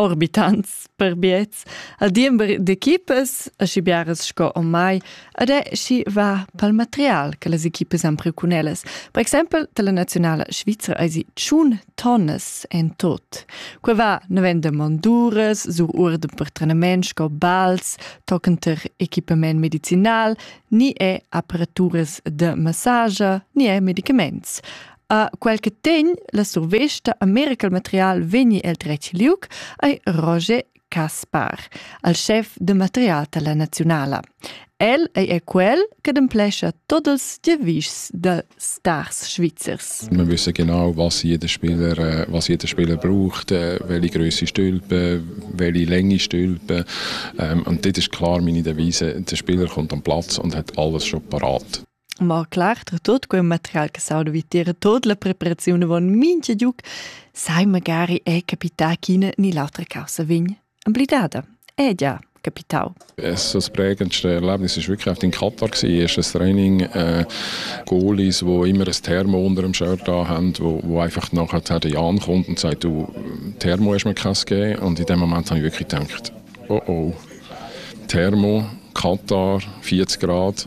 orbitants per biets a diember d'equipas aschi biaras sco ormai ed è schi va pal material che las equipas han priu cun ellas. Per exempel dalla nazionala svizra eisi tschun tonnas en tot. Qua va navenda monduras sur urden per trenament sco bals, toccenter equipament medicinal, ni è aparaturas de massage, ni è medicaments. A quel che tegn la survesta a miracle material vegni el dretg liuc ei Roger Caspar, al chef de material dalla naziunala. El ei er quel che demplescha tots els devischs de stars svizzers. Wir wissen genau, was jeder Spieler, äh, was jeder Spieler braucht, äh, welche Größe Stülpe, welche Länge Stülpe. Ähm, und dort ist klar meine Devise, der Spieler kommt am Platz und hat alles schon parat. Ma klar, tra tut quel material che sauda vitier, tut la preparazione von mincha giuc, sai magari è capità ch'ina ni l'autra causa vegn amblidada. È già capitau. Es das prägendste Erlebnis ist wirklich auf in Katar gewesen, erstes Training, äh, Goalies, wo immer ein Thermo unter dem Shirt da haben, wo, wo einfach nachher die Jan kommt und sagt, du, Thermo hast mir keins gegeben und in dem Moment habe ich wirklich gedacht, oh oh, Thermo, Katar, 40 Grad,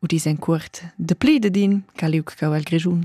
udis en cuort de pli dedin caliuc cau el Grischun.